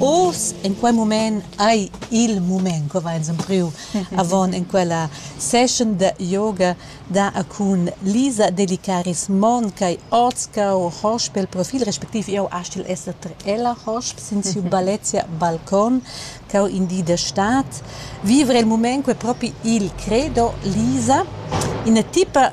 Oz in quei mument ei il mument co va ins empriu avon en quella session da yoga da a cun Lisa Delicaris Mon ch'ei oz cau hosp el profil respectiv jau astgel esser ter ella hosp sin siu ballezia balcon cau in di da stad vivre il mument quei propi il credo Lisa ina tipa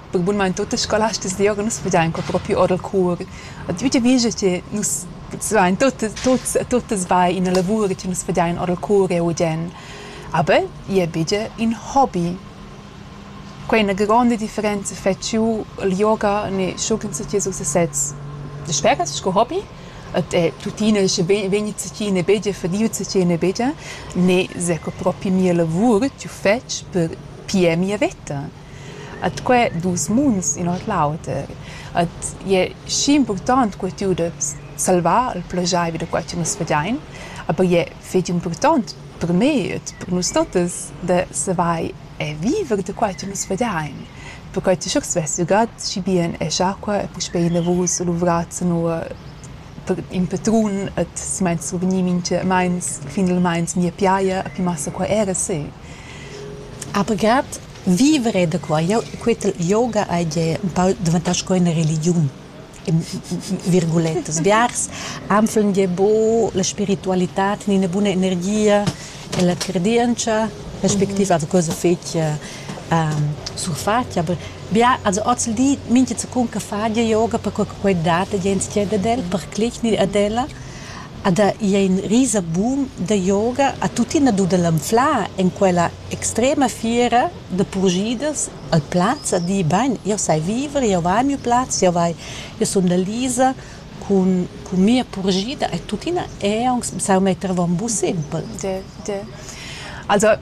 perque bunmain tuot las scolastas d'ioura nus vegian qua propi our dal cour. A tü giavüscha che nus vain tuottas tuots tuottas bain ina lavur che nus vegian our dal cour eau udian. Aber i è bigia ün hobby. Quai è üna gronda differenza fetsch jeu il yoga ne schucla'ns a tieus uss a sez. Sper che es sco hobby et è tuttina sche vegni cacina e begia fadieu cacina e begia ne s'è que propi mia lavur tü fetsch per pier mia veta. At que duos munds in ord l'auter. At i es schi impurtant co tü da salvar il plaschair vi da quai cha nus fadiain, aber i è fetg impurtant per me ed per nus tottas da savair e viver da quai cha nus fadiain, perquai cha sch'el svess ügat schi bien es acua e puspei inavous luvrats zanua per in patrun ed simaint survgni minchamaints finalmaing mia piaja e pi massa qua era se. Aber grad Vivere da qua. Jau quiet yoga hai gie empau daventau sco ina religiun virguletas biars han fun gie buc la spiritualitad ni ina buna energia e la credientscha respectiv also cosa fetg surfatg aber bia also oz il di mintga secund che fa gie yoga per quei che quei dat gie entschiet ad el per clich ni ad ella Ed ha i ein risa bun da yoga ha tuttina dut el anflar en quella extrema fiera da purschidas al plaz a dir bein, jeu sai viver, jeu vai a miu plaz, jeu vai, jeu sun da Lisa cun cun mia purschida e tuttina ei aunc saun metter avon buc sempel. De, de. Also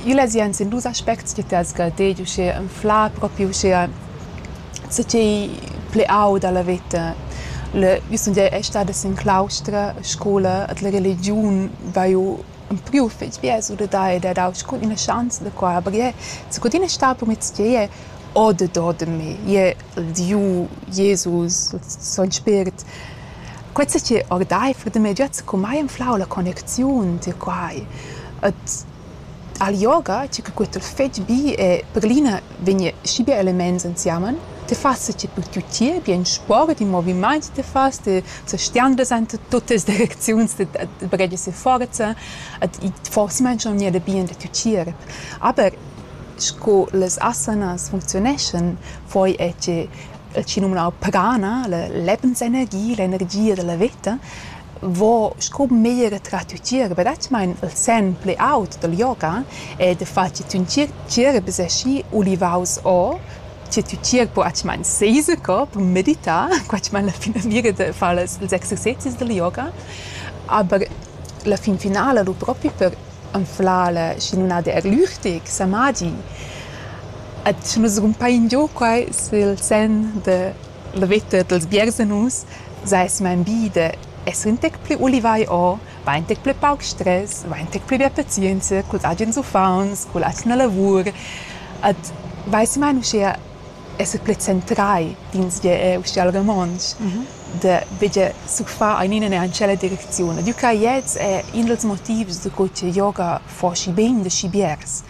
Igl es jent sin dus aspects chi t'hesga ded uschè anflar propi uschea co ch'ei pli aud a la veta. Le, io sun gia e stada sin claustra a scoula e d'la religiun vaiu ampriu fich bgers our da ed ha dau scu üna schanza da qua, aber ie secundina è stà promiss ch'ei o dador da me, ie il Dieu, Jesus, il Son Spirit. Quei sa che ordeifer da mei giat secumai anflau la connecziun tier quai. Ed al yoga, tgi che cuort el fetg bi e per l'ina vegn schi bia elements ensemen, ti fas sa che tut tier bi in sport, in movimaint ti fas, ti sa stiandas enta tuttas direcziuns, ti baghegias seforza ed forsa mangia aunc bien da tgier. Aber sco las asanas funcziuneschan, poi è che chi numnau pagana, la lebensenergia, l'energia dalla veta, vo sco meglier trat tier verdadermaing il sen plü aut dal yoga e da far chi tün tgierb es aschi ulivaus o che tü tgierb po atgmain seser co per meditar, quatgmain la finamira da far las ils exercezis dal yoga, aber la fin finala lu propi per anflar la schinuna der Lüchtig, Samagi. Ed sche nus rumpain giò quai sül sen da la vetta dals biersanus, saisma in bi da esser ün tec plü ulivai o, va ün tec plü pauc stres, va ün tec plü bia pazienza culs agens uffants, culla atgna lavur. Ed vaissi mai uschea esser plü centrai d'insgir eau schi al romontsch da veger surfar ainina neir in tschella direcziun. Ed eu craj ets è in dals motivs da co che yoga fa schi bain da schi biers.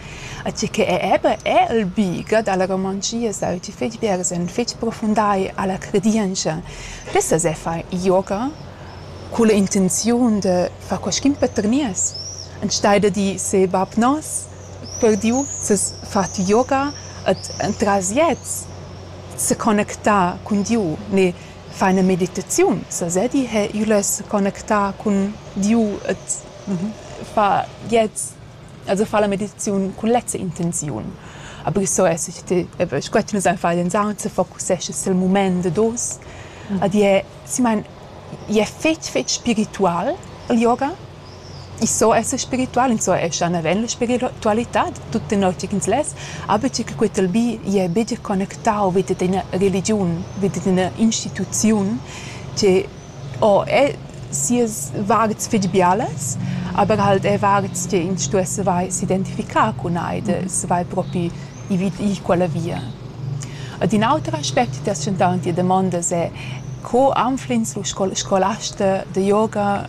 E tge che è eben è il bi da la romanschia, sau ti fetg biers en fetg profundai a la credientscha. Pess as è far yoga culla intenziun da far qualchün per nies. Enstagl da dir se bab nos, perdiu ses fatg yoga ed entras gliez seconnecta cun Diu ne fa ina meditaziun sasedi ha iu less seconnectar cun Diu ed fa gliez also fa la meditaziun cun lezza intenziun. Aber so es ich ti aber ich quet nus ein far den Sound se focussesce sil mument dad oz ed è si mein è fetg fetg spiritual il yoga I so esser spiritual, insumma escha naven la spiritualitad tut tenor tgi ch'ins less, aber tgi che quei tal bi gie buca connectau vi dad ina religiun, vi dad ina instituziun che o è sias vards fetg bialas, aber halt è vards che ins stuess saver s'identificar cun ei e saver propi ir vid ir quella via. Ed in auter aspect che ti has tschentau en tia damonda, è co anfl'ins lo scolasta da yoga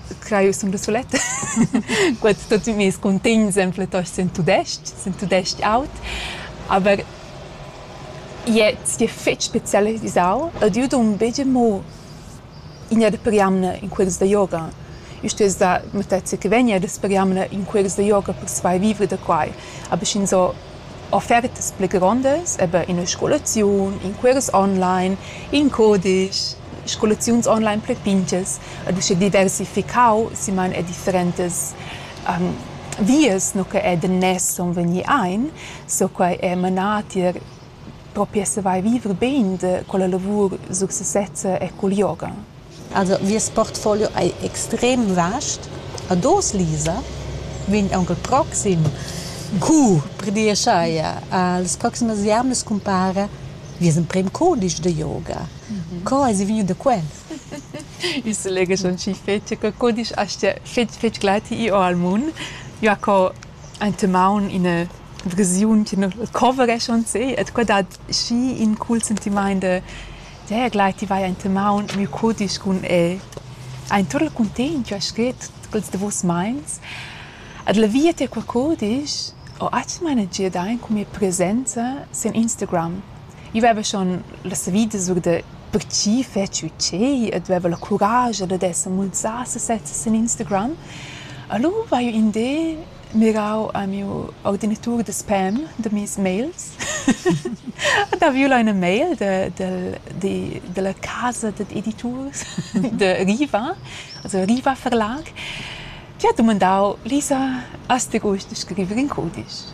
creu sun da suletta guad tot meis cuntegn sempre tost sen tudesc sen tudesc aut aber jetzt je fetg spezialisau ed io dun begia mo ina da per jamna in quels da yoga io stess da mattezia che vegna da per jamna in quels da yoga per svar vivre da quai aber sch'ins ho offertas pli grondas, eber ina scolaziun, in cuors online, in cudisch, scolaziuns online pli pintgas ed usche diversificau simain er differentas vias nu che er daners sun vegni aint, so quai è manà tier propi a savair vivre bain da quella lavur sur sesezza e cul yoga. Also nies portfolio ei extrem vast. Ad oz, Lisa, vegn aunc il proxim cours per dir scheia. Las proximas jamnas cumpara Vies emprem cudisch da yoga. Co eis vegniu da quel? Il selegess schon schi fetg che cudisch as tia fetg fetg gleiti io al mun. Jo co enta maun ina versiun che nu covereschon se, et qua dat schi in cool sentimaint da Teglai, ti vai enta maun miu cudisch cun el. Ha in tut il cuntegn ch'ho scrit quels davos meins. Ed la via tier quei cudisch ho atgna managia dain cun mia presenza sin Instagram. Io veva schon la savida sur da per tgi fetschi tgei ed veva la curascha dad esser mulsà sesezza sin Instagram. Alura vaiu in di mirau a miu ordinatur da sperm da mes mails ed haviu lu ina mail de del de della casa dad editurs de Riva also Riva Verlag die hat dumandau Lisa has du gusta scriver in cudisch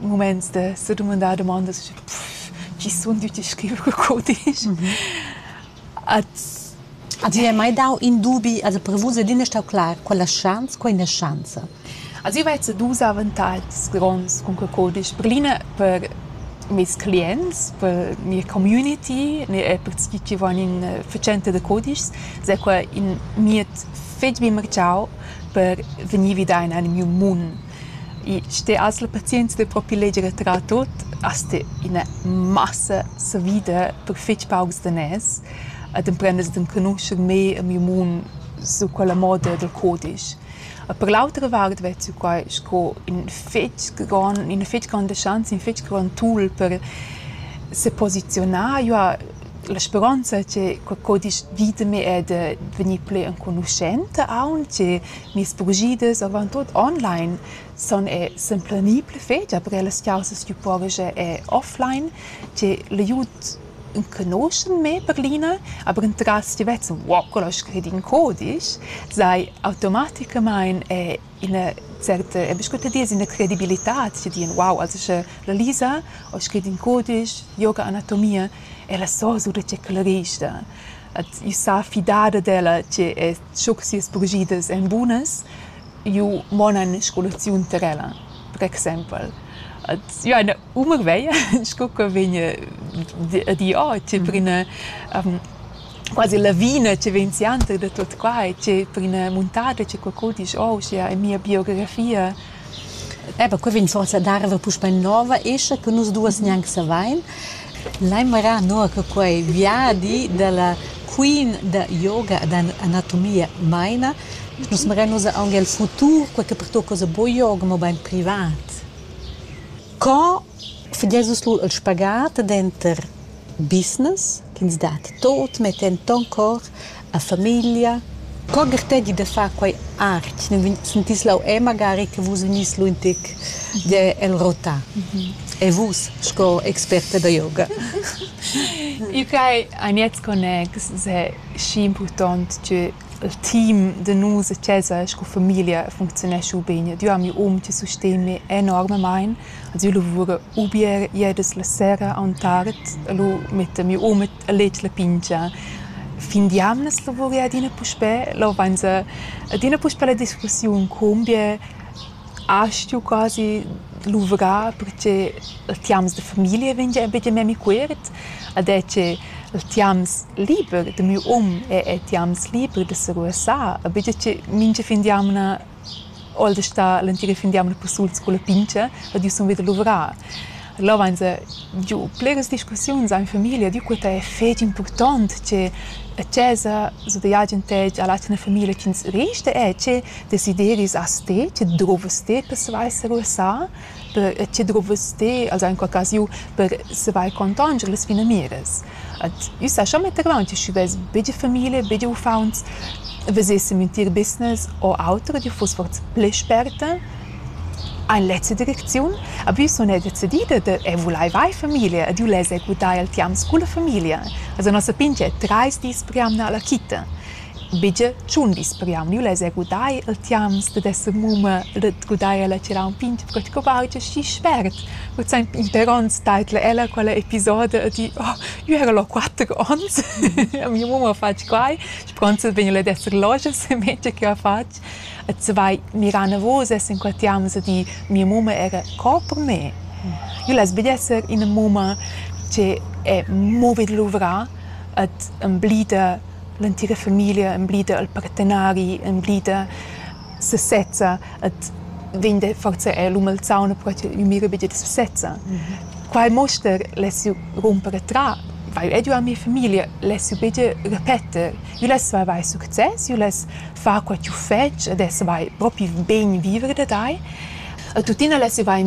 muments da sedumandar dumondas chi sun tüti scriver cul cudisch. At Ti hai mai dau in dubi, also per vus è l'ina stau clar, quella schanza, quella schanza. Also io vezzo dus avantatgs gronds cun quel cudisch. Per l'ina per meis clients, per mia community e per tgi chi van in fatschenta da cudischs, s'è quai in mied fetg bien marchau per vegnir vi da in al miu mund. I ste as la pazienza da propi leger e trar tuot, as sta ina massa savida per fich paucs daners ed emprendast d'enconuscher mê e miu mun su quella moda dal cudisch. E per l'autra vart vezzu quai sco ün fich grand üna fich granda schanza, ün fich grand tool per seposizionar. Io ha la speronza che quel cudisch vita mi è da vegnir plü enconuschenta aunch e Mias bugidas avon tut online sun er s'implanì pli fetg aber ellas chaussas tü pojas er offline, tg'e l'aiud enconuschen me per l'ina, aber entras ti vezzan wow quella ho scrit in codisch, sai automaticamaing er ina certa, e bes cute dis ina credibilità tg'e dien wow also sche la Lisa ho scrit in codisch yoga anatomia, ella so sulet tge ch'ella resta, ed io sa fidar ad ella tg'e es schuc sias purschiders èn bunas, ju monan scolaziun tar ella, per exempel. Ed ju hai ina uma veglia sco che vegn a dir, oh, tge per ina quasi lavina che vegn sianter da tut quai, tge per ina muntada che qualcun disch, oh, uschia è mia biografia. Eh beh, quei vegn forsa a dar era puspei nova escha che nus duas gnanc savein. Lai marar nua che quei viadi dalla queen da yoga ed anatomia meina. Nus marein ussa aunc el futur, quei che pertucca ussa buca yoga, mobein privat. Co fageis vus lu il spagat denter Business ch'ins dat tuot metta en ton cor a famiglia. Co gartegi da far quei art? Nun vegn- sentis leu e magari che vus vegnis lu in tic gie el rota. E vus sco experta da yoga? Eu craj a miez connex s'è schi impurtont tgür Il team da nus a chasa sco famiglia funcziunescha ubain. Ed io am miu um chi susteni enormamaing. Als io lavura u bger ieras la sera aunc tard e lu metta miu um a letg la pingia. Fin d'jamnas lavura ella adina puspè. Là vainsa adina puspè la discussiun cum bger As stu quasi luvrar perche il tiams da famiglia vegn gia buca memia cuort, ed è che il tiams liber da miu um è er tiams liber da se ruossar, e buca che mincha fin d'jamna ho el da star l'entira fin d'jamna persuls culla pintscha ed io sun vi da luvrar. Là vainsa giu bleras discussiuns amo in famiglia, dü quai è fetg impurtant che a chesa zudeigi ün tec a l'atgna famiglia chi'ns resta è che desideris as te, che druvas te per savair seruossar, per che druvas te alura in qualchasiu per savair contanger las finamiras. Ad üssa scha mettevaunt, sch'i vess be dü famiglia, be dü uffauns, vesessem ün tier business o auter, dü fuss forsa plü sperta Ein lezza direcziun habius zun era decidida da «eu vulaiva eir famiglia ed eu less executar il tiams culla famiglia», esa nossa pingia trais dis per jamna alla quita. Bigia tschun dis per jamna. Eu less executar il tiams dad esser mumma e da gudair ella tirà ün pingia perche co vaungia schi spert. Cul saimp inter ons taidla ella quella episoda e di «Oh, io era là quatter ons, a mia mumma fatg quai, schi pronta vegna ella ad esser loja se mengia che ha fatg». Et se vai mirar navos e s'inquatiam a dir mia mumma era co per me. Io less be esser ina mumma che è movi da luvrar et emblida l'entira familia, emblida il partenari, emblida se sezza et vegn da forsa er l'um al sauna però che io mira be da se sezza. Quai muster less io rumper a tra, vai edu a mia familia, less io be repeter. Vuless tu avair success, vuless far quai ch'jeu fetsch ed essas vai propi bain viver da tai. E tuttina less jeu vai in